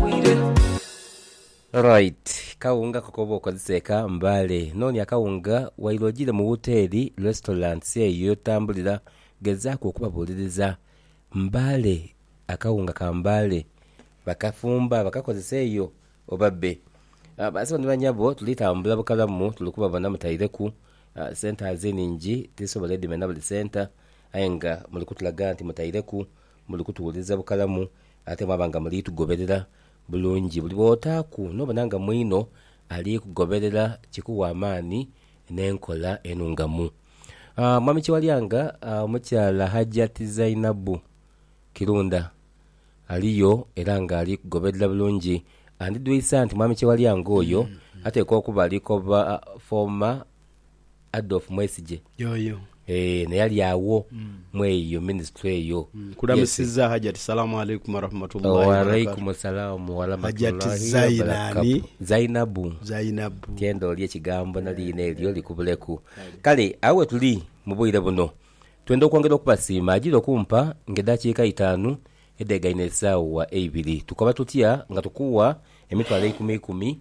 bwire. Alright kawunga ko koba okozesa eka mbale nonya kawunga waire ojire mu woteri, restaurants, eyo yotambulira gezaku okubabuliriza mbale akawunga ka mbale bakafumba bakakozesa eyo oba be Basebo ni banyabo tuli tambula bukalamu tuli kubabona mutaireku sente aze ningi tisobola edimena buli center aye nga muli kutulaga nti mutaireku Muli kutuwuliriza bukalamu ate mwaba nga muli tugoberera bulungi. Buli bw'otaaku n'obona nga mwino ali kugoberera kikuwa amaani n'enkola enungamu. Mwami Kyewalyanga, omukyala Hajjati Zainabu Kirunda aliyo era nga ali kugoberera bulungi. Andidhwisa nti Mwami Kyewalyanga oyo ateekwa okuba ali koba fooma. Adolf Mwesigye. Yoyo. Eeh naye ali agho mweyo ministry eyo. Nkulamisiza hajati salamu alaikum warahmatullahi wabarakatuh. Walaikumu salamu waramatulahi wabarakatu Zainabu tyenda olye ekigambo na liina elyo likubuleku kale agho wetuli mubwire buno twenda okwongera okubasiima ajira okumpa nga edakiika itaanu edegaine esaawa eibiri tukoba tutya nga tukuwa emitwalo eikumi ikumi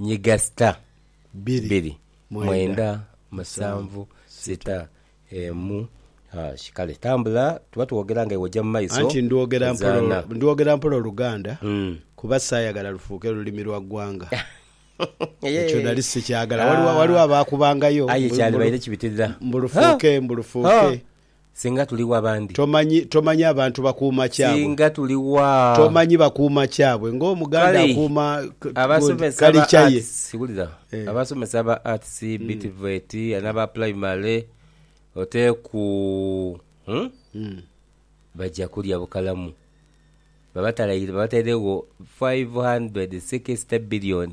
Nyiga sita, bbiri, mwenda, musanvu, sita, emu, hash. Kale tambula, tuba twogera nga iwe ojja mu maiso. Anti ndwogera mpola, ndwogera mpola Oluganda kuba saayagala lufuuke lulimi lwa ggwanga. Ekyo nali sikyagala. Waliwo, waliwo abaakubangayo mbu lufuuke, mbu lufuuke. Singa tuli wa bandi. Tomanyi, tomanyi abantu bakuuma kyabwe. Singa tuli wa. Tomanyi bakuuma kyabwe ng'Omuganda Kale, akuuma God, abasomesa ba culture ye. Arts, wulira, Eh. abasomesa ba Arts, be TVET, n'aba Primary, oteku, hmm? Mm. Baja kulya bukalamu. Babatalaire, babatairegho five hundred sixty billion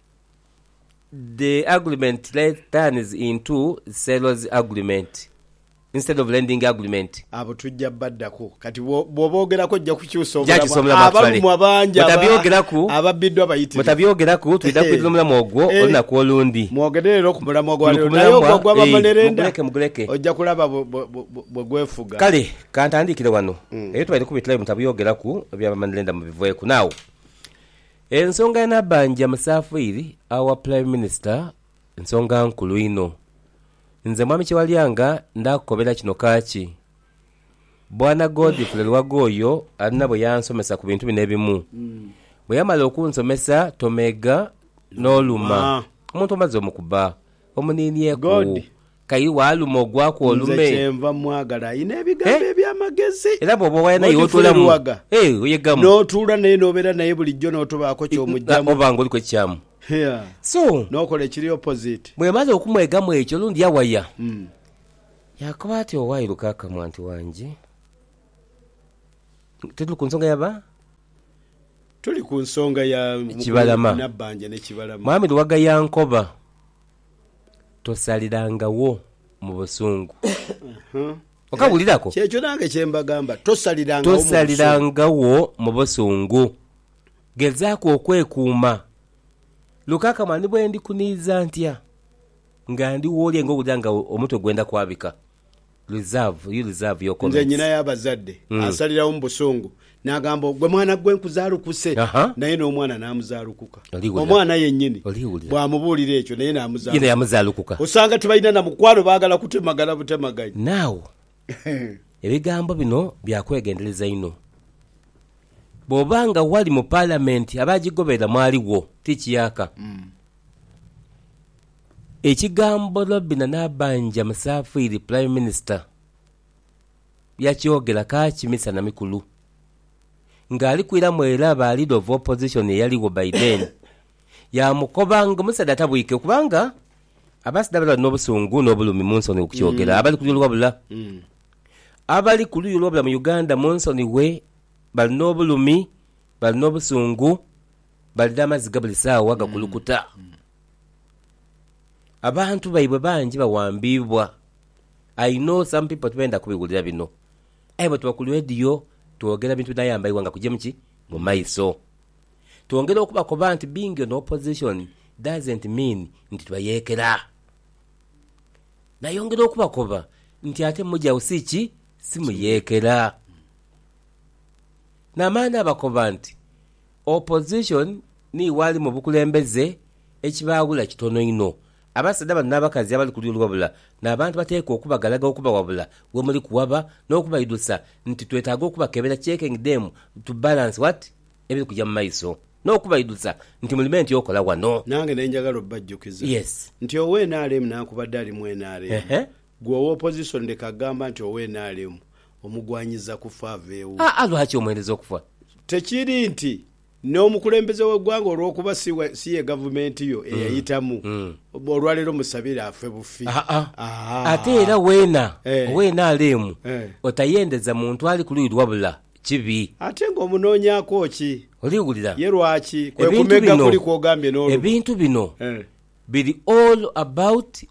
The agreement returns into seller's agreement instead of lending agreement. Abo tujja baddaku. Kati bw'oboogerako ojja kukyusa obulamu. Abalumwa bangi ababbidwa bayitirivu. Twidha kwidha omulamwa ogwo olunaku olundi. Mwogere leero ku mulamwa gwa leero, naye ogwo ogwa bamanerenda ojja kulaba bwe gwefuga. Kale ka ntandiikire wano. Ebyo twaidha kubitulayo mu Mutabyogeraku, ebya bamanerenda mubiveeku. Now. Ensonga ya Nabbanja Musaafiiri awa Prime Minister nsonga nkulu inho. Nze Mwami Kyewalyanga ndaakukobera kino kaaki. Bwana Godfrey Luwaga oyo alina bwe yansomesa ku bintu bino ebimu. Bwe yamala okunsomesa Tomeega n'oluma omuntu omaze omukuba. Omuniinieku. God. Kayi waaluma ogwaku olume. Nze kyenva mwagala alina ebigambo eby'amagezi. Era bw'oba owaaya naye otuulamu. N'otuula naye n'obeera naye bulijjo n'otobaako ky'omuggyamu. Oba ng'oliku ekikyamu. So. N'okola ekiri opposite. Bw'emala okumwegamu ekyo olundi yawaya. Yaakoba ati, Owaaye Lukaaka mwantu wange, tuli ku nsonga ya ba. Tuli ku nsonga ya mukulu Ekibalama. Nabbanja ne Kibalama. Mwami Luwaga yankoba, Tosalirangawo mu busungu. Okabuliraku? Kyekyo nange kye mbagamba, tosalirangawo mu busungu. Tosalirangawo mu busungu. Gezaaku okwekuuma. Lukaakama ni bwe ndikuniiza ntya, nga ndi wooli aye ng'owulira nga omutwe gwenda kwabika. Reserve you reserve your comments. Nze nyina y'abazadde asalirawo mu busungu n'agamba ogwe mwana gwe nkuzaalukuse, naye n'omwana n'amuzaalukuka. Omwana yennyini bw'amubuulira ekyo naye n'amuzaalukuka. Osanga tibalina na mukwano baagala kutemagana butemaganyi. Now ebigambo bino bya kwegendereza inho. Bw'oba nga wali mu Palamenti abaagigobera mwaliwo ti kiyaka. Ekigambo Robina Nabbanja Musaafiiri Prime Minister yakyogera kaakyi misana mikulu ng'ali kwira mwera ba Leader of Opposition eyaligho by then yaamukoba ng'omusaadha atabwike kubanga abasaadha abali bali n'obusungu n'obulumi mu nsoni okukyogera abali kuluyi olwabula abali kuluyi olwabula mu Uganda mu nsoni we bali n'obulumi bali n'obusungu bali n'amaziga buli saawa gakulukuta Abantu baibwe bangi bawambiibwa. I know some people tibendha kubiwulira bino aye bwetuba ku leediyo twogera bintu binayamba eighanga kugyemu ki? Mu maiso. Twongera okubakoba nti being on opposition doesn't mean nti tubayeekera. Nayongera okubakoba nti ate mugya wo si ki? Si muyeekera. Naamala naabakoba nti Opposition niiwe ali mu bukulembeze ekibaawula kitono inho. Abasaadha bano n'abakazi abali ku luuyi oluwabula n'abantu bateekwa okubagalaga okubawabula wemuli kuwaba n'okubaidhusa nti twetaaga okubakebera checking them to balance what? ebiri kuja mu maiso n'okubaidhusa nti mulime nti okola wano. Nange nali njagala obajjukiza Yes. nti ow nrm nankubadde ali mu nrm Ehe. Gwe owa opposition leka gamba nti owa nrm omugwanyiza kufa aveewo. Aa lwaki omwereza okufa? Tekiri nti n'omukulembeze w'eggwanga olwokuba si ye gavumenti yo eyayitamu, olwaleero musabire afe bufi? Haa. Ate era weena owa nrm otayendeza muntu ali ku luyi lwa bula kibi. Ate nga omunoonyaako ki? Oli wulira. Ye lwaki? Kwe kumegga kuli kw'ogambye n'oluba. Ebintu bino biri all about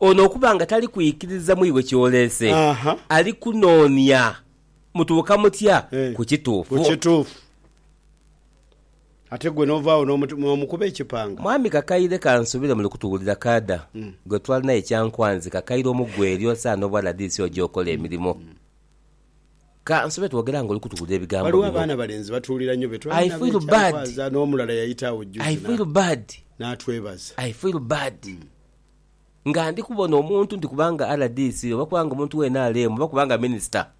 Ono okuba nga tali kwikiriza mu iwe ky'oleese, ali kunoonia mutuuka mutya ku kituufu. Ku kituufu. Ate gwe n'ovaagho n'omukuba ekipanga. Mwami Kakaire kansubire muli kutuwulira kaada gwe twalina ye Kyankwanzi Kakaire omu gwe eri osaana obwa rdc oje okole emirimo. Kansube twogera nga oli kutuwulira ebigambo bino. Waliwo abaana balenzi batuwulira nnyo be twali nabo e Kyankwazi n'omulala yayita agho jjuuzi n'atwebaza. I feel bad. nga ndi kubona omuntu nti kubanga RDC oba kubanga omuntu wa nrm oba kubanga minisita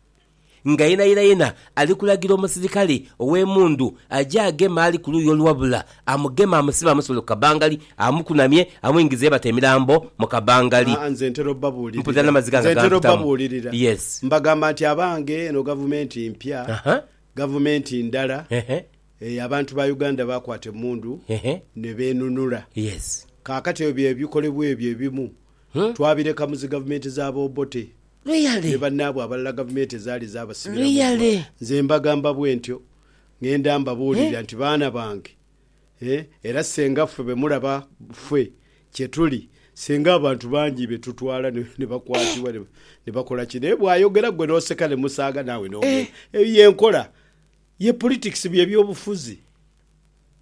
nga yenayena ali kulagira omusirikale ow'emundu aje ageme ali ku luuyi oluwabula amugeme amusibe amusibule ku kabangali amukunamye amwingize yebata emirambo mu kabangali. Aa nze ntera obabuulirira nze ntera obabuulirira mbagamba nti abange eno gavumenti mpya gavumenti ndala Eeh abantu ba Uganda bakwata emundu ne benunula. Kakati ebyo bye bikolebwa ebyo ebimu twabireka mu zi gavumenti za ba Obote ne banaabwe abalala gavumenti ezaali zabasibira mu ggwa. Nze mbagamba bwentyo ngenda mbabuulirira nti baana bange eeh era ssenga ffe be mulaba ffe kye tuli ssenga abantu bangi be tutwala ne bakwatibwa ne bakola ki naye bwayogera gwe n'oseka ne musaaga naawe n'ogenda. Eyo ye nkola. Ye Politics bye byobufuzi.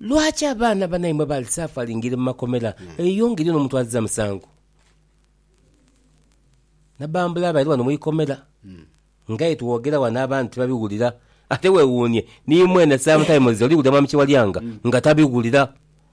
Lwaki abaana banaimwe bali suffering mu makomera eyo ngeri no muntu aziza musango nabambula abali wano mwikomera ngaye twogera wano abantu tibabiwulira ate wewuunye nimwene sometimes oliwulira mwami Kiwalyanga nga tabiwulira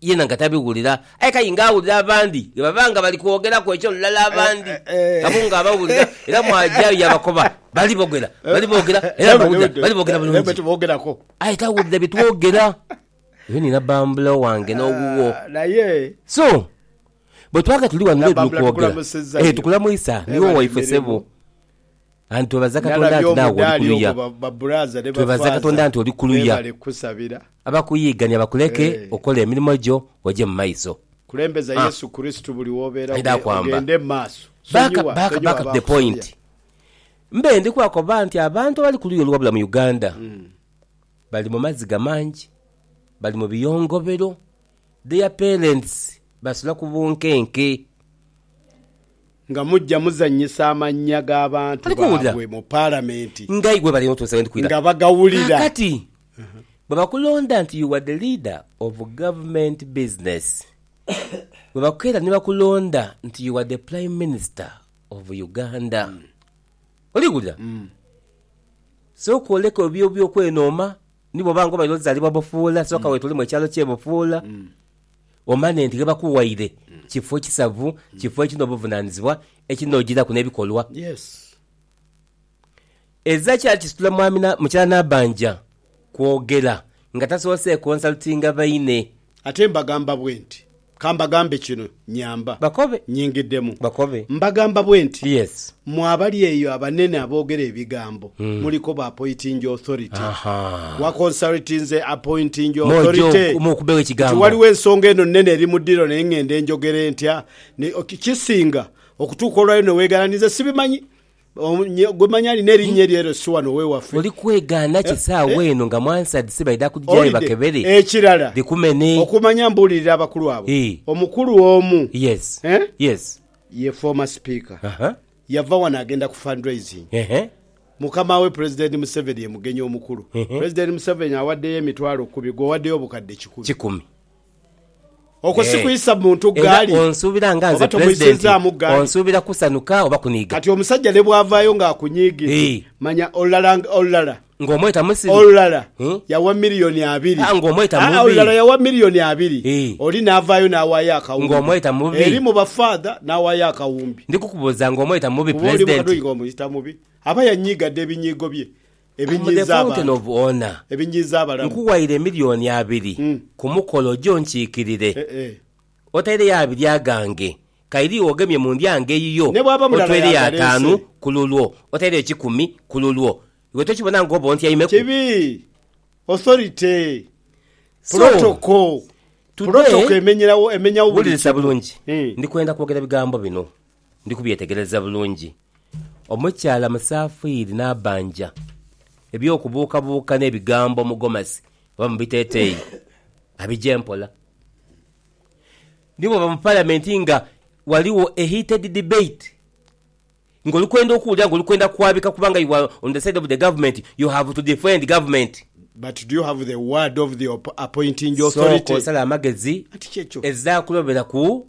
Yena nga tabiwulira, aye kainga awulira abandi ghe baba nga bali kwogeraku eky'olulala abandi nabo nga abawulira, era mw'ajayo yaabakoba. Bali bogera, bali boogera, era mbawulira, bali boogera bulungi. Aye tawulira bye twogera. Eyo ni nabambula owange n'owuwo. So, bwe twaba nga tuli ghano leero ni kwogera, ee, tukulamwisa, niiwe waife sebo. And twebaza Katonda nti naawe oli kuluya. Twebaza Katonda nti oli kuluya. Abakuyiigania bakuleke okola emirimo gyo oje mu maiso. Ah. Aidha kwamba. Back, back, back to the point. Mbe ndi kwakoba nti abantu abali ku luuyi oluwabula mu Uganda bali mu maziga mangi, bali mu biyongobero, their parents basula ku bunkenke. Nga mujja muzannyisa amannya g'abantu baabwe mu Palamenti nga bagawulira. Kaakati, bwe bakulonda nti you are the leader of government business, bwe bakeera ni bakulonda nti you are the Prime Minister of Uganda, oli wulira? Sooka oleke ebyo eby'okwenooma ni bw'oba nga obaire ozaalibwa Bufuula, sooka weetolemu ekyalo ky'e Bufuula. omane nti ghe bakuwaire kifo kisavu, kifo ekiri n'obuvunaanizibwa, ekinoojeraku n'ebikolwa. Ezira kyali kisitula mwami na mukyala Nabanja kwogera nga tasoose konsaltinga baine. Ate mbagamba bwenti, ka mbagambe kino, nyamba. Bakobe. Nnyingidemu. Bakobe. Mbagamba bwenti, Mmwe abali eyo abanene aboogera ebigambo, muli koba appointing authority. Ahaa. Waconsulti nze appointing Mw'oja authority? oku- mw'okubegho Nti ekigambo. waliwo ensonga eno nnene eri mu ddiro naye ng'ende njogere ntya? Ne- ok, Kisinga okutuuka olwayo ne weegaana nti, Nze sibimanyi. Omu- nye- Gwe manyi alina erinnya eryo ero si wano w'ewaffe. Oli kwegaana ki esaawa eno nga mwansad si baidha kugigyayo Owulidde? bakebere? Ekirala, Bikumene. okumanya mbuulirira abakulu abo, Ii. omukulu omu, Yes. eh? Yes. Ye former speaker yava wano agenda ku fundraising. Mukama we President Museveni ye mugenyi omukulu. President Museveni awaddeyo emitwalo kumi gwe owaddeyo obukadde kikumi. Okwo si kuyisa muntu ggaali oba tomuyisizzaamu ggaali. Kati omusajja ne bw'avaayo ng'akunyiigira manya olulala olulala. Ng'omweta Misiri. Olulala yawa milioni abiri. Ah, ng'omweta mubi. Ah, olulala yawa milioni abiri. Ii. Oli naavaayo naawaayo akawumbi. Ng'omweta mubi. Eri mu bafaadha naawaayo akawumbi. Ndi kukubuuza ng'omweta mubi, Pulezidenti. Kuba oli mu kadhoyi ng'omuyita mubi. Aba yanyiiga dha ebinyiigo bye ebinyiiza abantu, ebinyiiza abalamu. Nkuwaire milioni abiri ku mukolo oje onkiikirire. Eh, eh. Otaireyo abiri agange. Kairi ogemye mu ndyango eyiyo, Ne bw'aba mulala otweireyo ataanu y'agaleese. ku lulwo, otaireyo kikumi ku lulwo. Iwe tokibona nga oba ontyaimeku? Kibi. Authority. So, Protocol. today, Protocol emenyerawo, emenyawo buli wulirisa kimu. bulungi, Hee. ndi kwenda kwogera bigambo bino. Ndi kubyetegereza bulungi. Omukyala musaafiiri n'abanja. Eby'okubuukabuuka n'ebigambo mu gomasi oba mu biteeteeyi abigye mpola. Ni bw'oba mu Palamenti nga ghaligho a heated debate nga oli kwenda okuwulira nga oli kwenda kwabika kubanga you are on the side of the government, you have to defend government. But do you have the word of the appointing authority? Sooka osale amagezi, ezaakulobera ku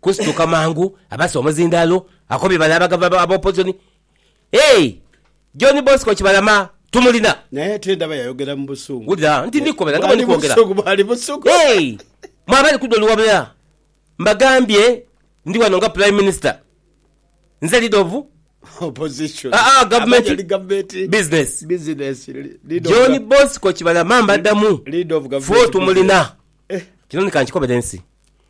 Kusituka mangu abase omuzindaalo akobye bale abagava ba Opozoni Hey! John Bosco Kibalama tumulina. Naye ate ndaba yayogera mu busungu. Wulira, nti ndi kukobera nga bwe ndi kwogera. Bwali busungu, bwali busungu. Hey! Mwe abali ku doli wabula mbagambye ndi wano nga Prime Minister. Nze leader of. Opposition. Ah, ah, government. Abali ali government. Business. Business. Leader of John Bosco Kibalama mbaddamu. Leader of government. Fo tumulina. Eh. Kino ni kankikobere ensi.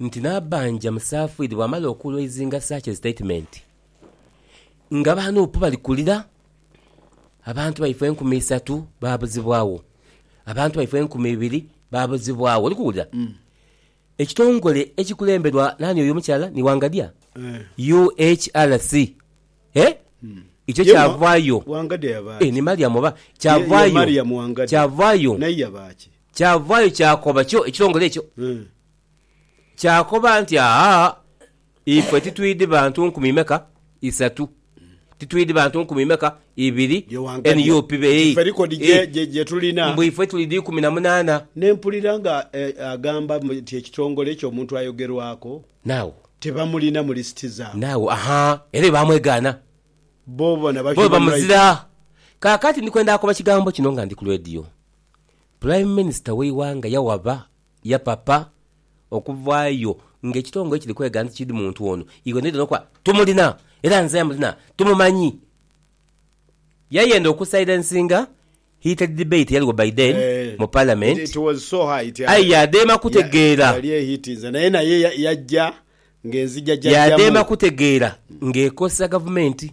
nti Nabbanja musafiiri bw'amala okuula eizinga such a statement nga aba nup bali kulira abantu baife enkumi isatu baabuzibwagho, abantu baife enkumi ibiri baabuzibwagho. Oli kuwulira? Ekitongole ekikulemberwa naani oyo omukyala ni Wangadya? UHRC. Eh? Ikyo Ye wa- kyavaayo. Wangadya yaba Eh, ki? ni Mariam oba? Ye- ye Kyavaayo. Mariam Wangadya. Kyavaayo. Naye yaba ki? Kyavaayo kyakoba kyo ekitongole ekyo, kyakoba nti, Aa, ife titwidhi bantu nkumi meka? Isatu. Titwidhi bantu nkumi meka? Ibiri. Nup beei, ee, mbu ife tuli dha ikumi na munaana. Ne mpulira nga agamba nti ekitongole ekyo omuntu ayogerwaku tebamulina mu lisiti zaabwe. Naagho, ahaa, era baamwegaana. Bo bamuzira. Kaakati ndi kwenda akoba kigambo kino nga ndi ku leediyo. Pulayimu Minisita w'eighanga yawaba yapapa okuvaayo nga ekitongole kiri kwega nti kid muntu ono ighenoidheno okuba tumulina era nze amulina tumumanyi. Yayenda okusilensinga heated debate eyaliwo by then mu Palamenti aye yadema kutegeera yadema kutegeera ng'ekozesa Gavumenti.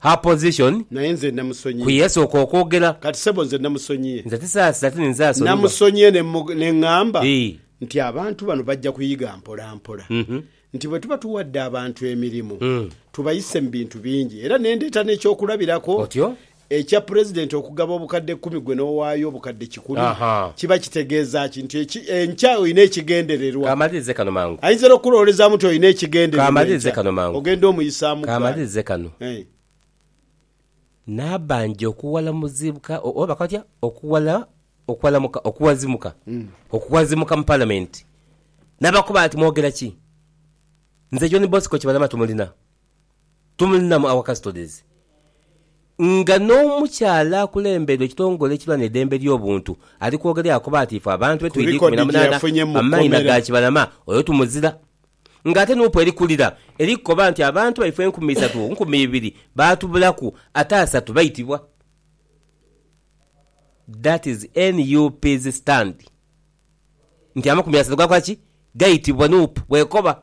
Her position, Naye nze namusonyiye. Ku yasooka okwogera. Kati sebo nze namusonyiye. Nze tisaasira ti ninze asonyiwa. Namusonyiye ne ne ngamba nti abantu bano bajja kuyiga mpolampola nti bwe tuba tuwadde abantu emirimu tubayise mu bintu bingi era ne ndeeta n'ekyokulabirako Ekya Pulezidenti okugaba obukadde kumi gwe n'owaayo obukadde kikumi kiba kitegeeza ki? Nti enkya olina ekigendererwa. Ayinza era okukulowoolezaamu nti olina ekigendererwa enkya ogenda omuyisaamu ggaali. N'abanja okuwala Muzibuka oba bakola batya? Okuwala, okuwalamuka, okuwazimuka, okuwazimuka mu Palamenti n'abakoba ati, Mwogera ki? Nze John Bosco Kibalama tumulina Tumulinamu our custodies nga n'omukyala akulembeire ekitongole ekirwanira eidembe ly'obuntu ali kwogera yakoba nti ife abantu be twidha ikumi na munaana amaina ga Kibalama oyo tumuzira nga ate nup eri kulira eri kukoba nti abantu baife enkumi isatu ku nkumi ibiri baatubulaku ate asatu baitibwa that is NUP's stand nti amakumi asatu gakola ki? gaitibwa nup bwekoba.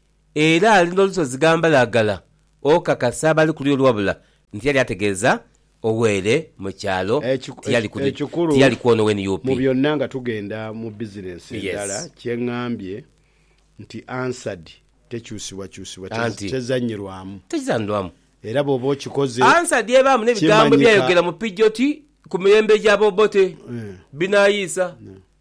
Era ali n'olusozi ghambalagala okakasa abali ku lulyo wabula ntiyali ategeeza owere mu kyalo tiyali kwona we nup. Mubyonna nga tugenda mu business endala kyengambye nti Ansard tekyusibwakyusibwa tezanyirwamu era bwoba okikoze kimanyika.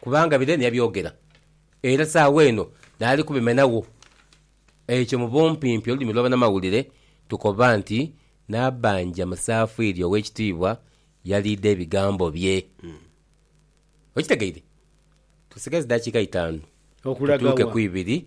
kubanga bire niyabyogera, era saagho eno naali kubimenagho. Ekyo mu bumpimpi olulimi lw'abanamawulire tukoba nti Nabbanja Musaafiiri Ow'ekitiibwa yaliidha ebigambo bye. Okitegeire? Tusigaza daakiika itaanu tutuuke ku ibiri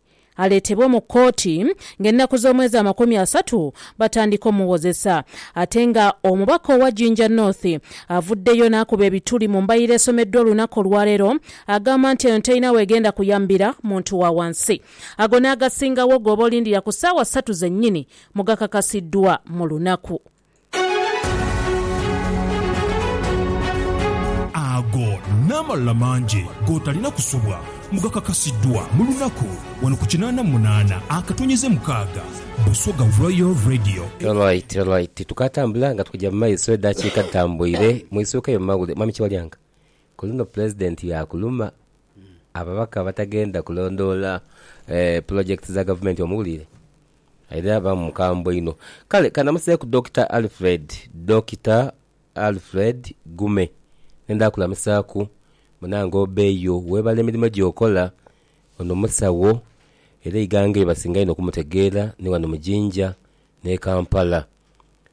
aleetebwe mu kooti ng'ennaku z'omwezi amakumi asatu batandika omuwozesa ate nga omubaka owa Jinja North avuddeyo n'akuba ebituli mu mbalirira esomeddwa olunaku olwaleero agamba nti eno terina w'egenda kuyambira muntu wa wansi ago n'agasingawo g'oba olindira ku ssaawa ssatu zennyini mu gakakasiddwa mu lunaku Ago n'amalala mangi g'otalina kusubwa mbu gakakasiddwa mu lunaku wano ku kinaana mu munaana akatonyeze mukaaga Busoga Royal Radio. Alright alright tukatambula nga tukuja mumaiso edakiika dhitambuire mwisuuka eyo mumawulire mwami Kiwalyanka kuluno pulezidenti yakuluma ababaka abatagenda kulondoola pulojekiti za gavumenti omuwulire? Aidha yaba mukambwe inho. Kale kanamaseeku Dokita Alfred, Dokita Alfred Gume nenda kulamisaaku munange obeeyo webale emirimo gyokola ono musawo era eighanga lyebasinga inho okumutegeera ni wano mu Jinja ne Kampala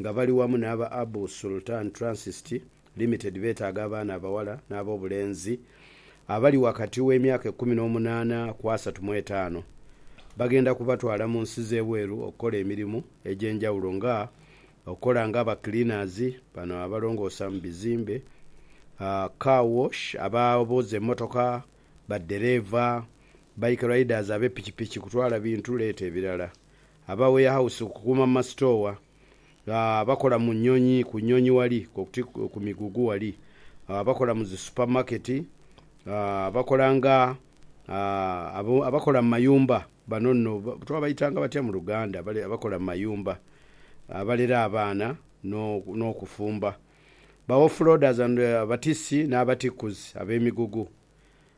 nga bali wamu n'aba Abu Sultan Transist Limited beetaaga abaana abawala n'ab'obulenzi abali wakati w'emyaka ekumi n'omunaana ku asatu mu etaano. Bagenda kubatwala mu nsi z'ebweru okukola emirimu egy'enjawulo nga okukola nga aba cleaners, bano abalongoosa mu bizimbe, car wash, abooza emmotoka, baddereeva, bike riders, abe pikipiki, kutwala bintu, leeta ebirala. Aba weyahawusi ku kukuuma mu masitoowa, abakola mu nnyonyi, ku nnyonyi wali, koti ku migugu wali, abakola mu zi supamaketi, abakola nga, abakola mu mayumba, bano nno twabaitanga batya mu Luganda? Bale abakola mu mayumba, abalera abaana n'okufumba, ba offloaders and, abatiisi n'abatikkuzi ab'emigugu,